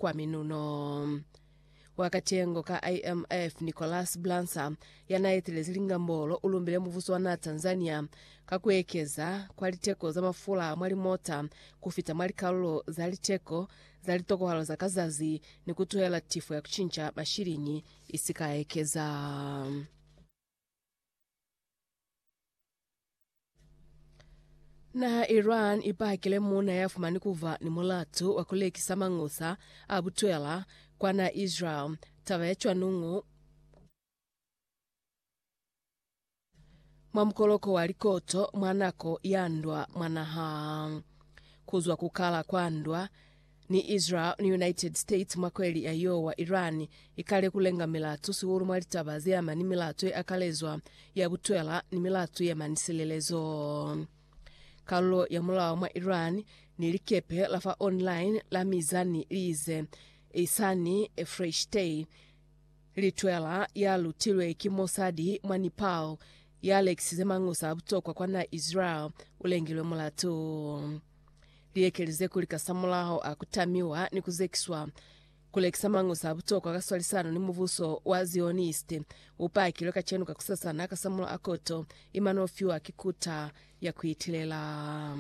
kwa minuno. Wa katengo ka IMF Nicholas Blansa yanaetelezi lingambolo ulumbile muvuso wa naa Tanzania ka kuekeza kwa liteko za mafula mwa limota kufita mwa likalulo za liteko za litokohalo za ka zazi ni kutuhela tifo ya kucinca mashilingi isikaekeza. Naha ya Iran i pakile muuna ya fumani ku ba ni mulatu wa ku lekisa mañusa a butwela kwa naha ya Israel. Taba ya cwanuñu mwa mukoloko wa likoto mwa nako ya ndwa mwa naha. Ku zwa ku kala kwa ndwa, Ni Israel ni United States mwa kweli ya yoo wa Iran ikale ku lenga milato sihulu mwa litaba ze ama ni milato ye akalezwa ya butwela ni milato ye ama ni silelezo. Kalulo ya mulao mwa Iran ni likepe la fa online la Mizani li ize, Ehsani Efreshtey, litwela ya lutilwe ki Mossadi mwa Nepal, ya lekisize mangusa a butokwa kwa na Israel, u lengilwe mulatu. Liekelize kuli kasamulaho a ku tamiwa ni ku zekiswa, ku lekisa mañusa a butokwa ka swalisano ni mubuso wa Zioniste u pakilwe kacenu kakusasana kasamulaho a koto i mano fiwa ki Kuta ya ku Itilela.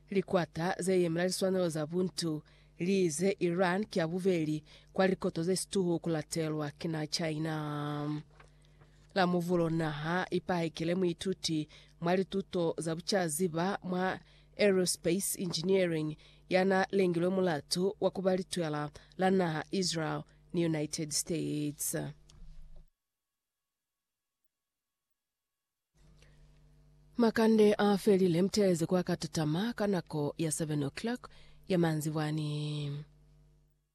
Likwata ze yemela liswanelo za buntu li ize Iran ki ya bubeli kwa likoto ze situhu ku latelwa ki na China. La Muvulo naha i pahekele muituti mwa lituto za bucaziba mwa Aerospace Engineering ya na lengilwe mulatu wa ku ba litwela la naha Israel ni United States. Makande a felile mtelezi kwa ka tatama ka nako ya 7 o'clock ya manzibwani.